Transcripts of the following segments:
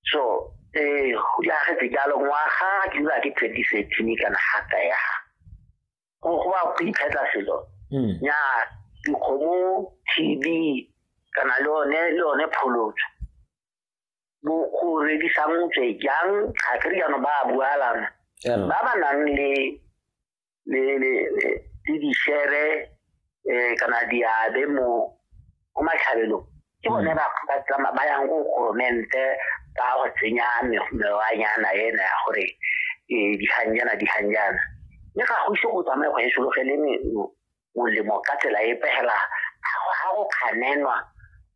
so eh la ge ke dalo ngwaga ke dula ke 2013 kana ha ka ya go go ba go iphetla selo mm. ya dikgomo tb kana le one le one pholotso bo go redisang tswe jang ga ke riano ba bualana ba ba nang le le le le di share eh kana diabe mo mo matlhabelong ke bone ba ba tsama ba yang go goromente ba go tsenya mewanyana ena ya gore eh, diganjana diganjana mme ga go ise go tsamaye go e sologele molemo ka tsela e pegela ga go kganenwa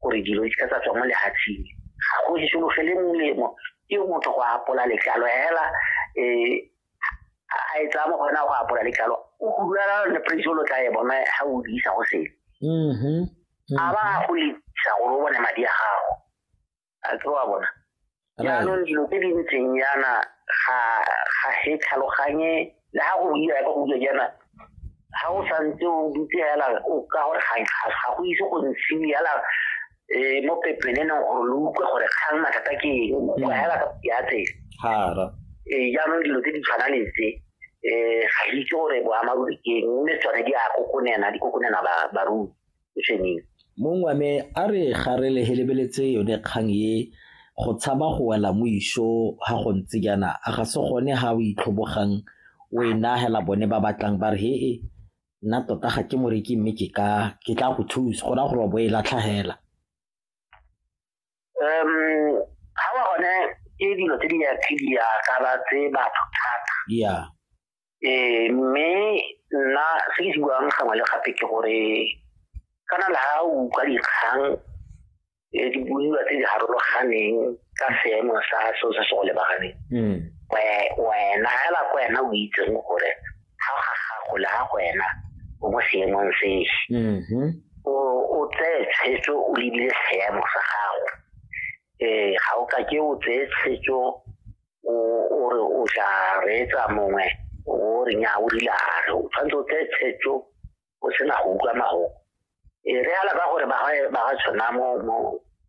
gore dilo di ka tsa tswa mo lehatsheng ga go e sologele molemo ke motho go apola letlalo hela um a e tsaya mo go yona go apola letlalo o hulara le presolo tla e bona ga o di isa go sele mm-hmm. a ba go lesa gore o bone madi a gago a ke wa bona jaanong dilo tse di ntseng yana ga ga he tlhaloganye le ha go buiwa ka go buiwa jaana ha o santse o dutse fela o ka gore ga go ise go ntshiwe fela um mo pepeneneng gore lo utlwe gore kgang mathata ke eng go fela ka ya tsela ee jaanong dilo tse di tshwanang le tse um ga itse gore boamaruri ke eng mme tsone di a kokonena di kokonena barui sešweng. Mong wa me a re ga re lehelebeletse yone kgang e go tshaba go wela mo iso ga go ntse jaana a ga se gone ga o itlhobogang o e nagela bone ba batlang ba re he e nna tota ga ke moreki mme ke ka ke tla go thusa go raya gore wa bo e latlhagela um ga wa gone ke dilo tse di ya tse di ya tsa batho thata yeah eh mme nna se ke se buang gangwe le gape ke gore kana le ha o utlwa dikgang eh, di buiwa tse di harologaneng ka seemo sa seo se se go lebaganeng hmm. wena hela ko wena o itseng gore ga ga gago le ga wena o mo seemong se mm-hmm. o tseye tshwetso o lebile seemo sa gago um ga o ka ke o tseye tshwetso o o re o tla reetsa mongwe o re nya o dilare o tshwanetse o tseye tshetso o sena go utlwa mago e re ala ka gore ba ga tshwana mo mo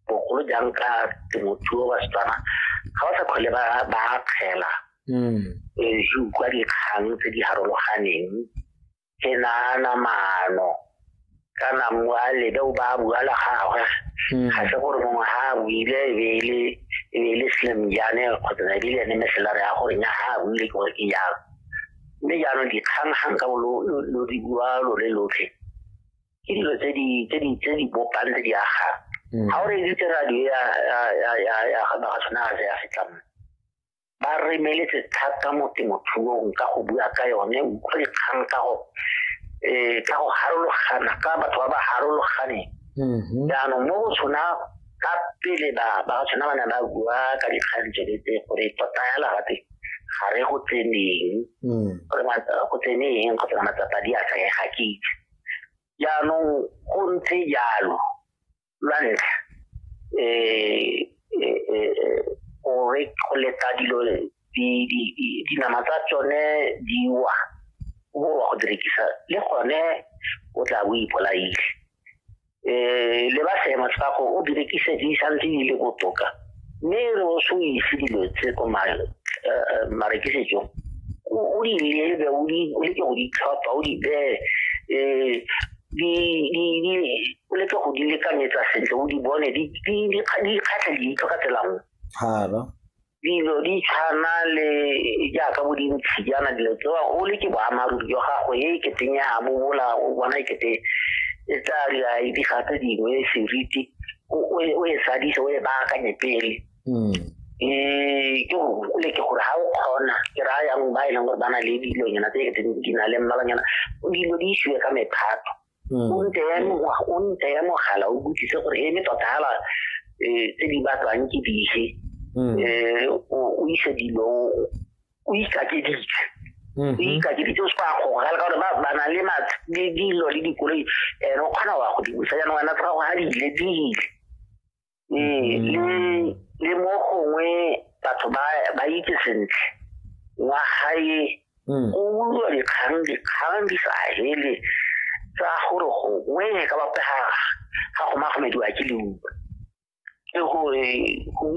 bogolo jang ka temothuo ba setswana ga ba sa kgole ba ba kgela mm. e utlwa dikgang tse di harologaneng ke naana maano kana mmu a lebe o ba a bua la gagwe hmm. ga se gore mongwe ga a buile e be e e le slim jane kgotsa na ebile ene meselare ya gore nya ga a buile ke gore ke jalo mme jaanong dikgang gang ka lo di bua lo le lotlhe ke dilo tse di bopang tse di agang ga hmm. o re editse radio ya ga tshwana ga se ya setlammo ba re meletse thata mo temothuong ka go bua ka yone utlwe kgang ka go eh ka go harologana ka batho ba ba harologaneng mm-hmm. jaanong mo go tshwana ka pele ba ba tshwana ba ne ba bua ka dikgang tse tse gore tota ya lagate ga re go tseneng mm. gore go tseneng go tsena matsapa di a sa ga ke itse jaanong go ntse jalo lwa ntlha um go leta dilo dinama tsa tsone di wa bo wa go di rekisa le gone o tla bo ipolaile um le ba seemo sa go o di rekise di santse di le botoka mme re o se o ise dilo tse ko marekisetsong o di lebe o leke go di tlhopha o di bee um di di o leke go di lekanyetsa sentle o di bone di di di kgatlha di itlo ka tsela nngwe hara dilo di tshwana le jaaka bo dintshi jaana dilo tsewa o le ke boammaaruri jwa gago e keteng ya mo bola o bona e kete e tsa di ga tse dingwe seriti o e sadisa o e baakanye pele um ke go gole ke gore ga o kgona ke raya yang ba e leng gore ba na le dilonyana tse di na le mmalanyana dilo di isiwe ka mephato hmm. o nte ya mogala o botsise gore e me tota fela um tse di batlwang ke dife um hmm. eh, o ise dilo o ikakeditse o ikakeditse o se kwa gogala ka gore ba na le dilo le dikoloi ene o kgona wa go di busa jaanong wena tsa gago ga di ile di ile ee le le mo gongwe batho ba ba itse sentle wa gae mm. o utlwa dikgang dikgang di sa hele tsa gore gongwe ka bapega ga go magomediwa ke leuma ke gore